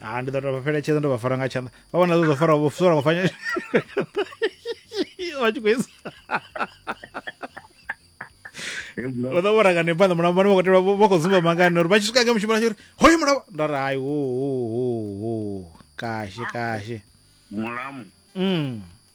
ha ndi ḓo to vha fheletshedza ndo vha fara nga tshanḓa vha vhona ḓo fara vho fara vha fanya vha tshi khou isa vha ḓo vhora ngani phanḓa mulamba vha khou tevha vha khou zumba mangani uri vha tshi swika nga mushumo uri hoyo mulamba nda ri hayi ho ho ho kashi kashi mulamu mm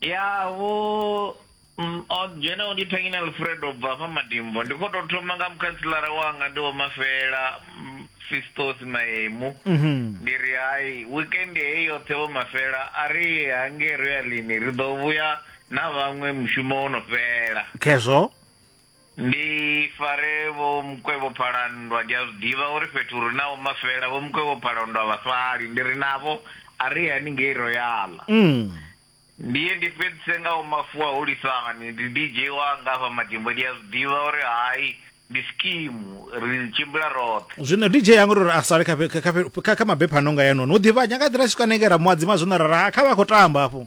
ya vho mm, o dzhena u dithangini alfred u bva hafha madimbo ndi khou tou thoma nga mukhantselara wanga ndi vho mafela mm, fistos maemu Mhm. ndi ri hai weekend heyi yoṱhe vho mafela a ri ye hangei royalini ri ḓo vhuya na vhaṅwe mushumo wo no fhela khezwo Ndi fare Vho Mukwevho Phalandwa ndi a zwi ḓivha uri fhethu ri na Vho Mafela, Vho Mukwevho Phalandwa a vha sali, ndi ri navho a ri ye haningei Royal. Ndi ye ndi fhedzise nga Vho Mafuwa Holisani, ndi DJ wanga hafha Madimbo ndi a zwi ḓivha uri hai ndi skimu ri tshimbila roṱhe. Zwino DJ a nga uri a sale kha kha kha kha kha mabepha a no nga haenoni, u ḓivha nya nga ḓi ra tshi swika hanengei ra mu hadzima zwino ra ri ha kha vha a khou tamba hafhu.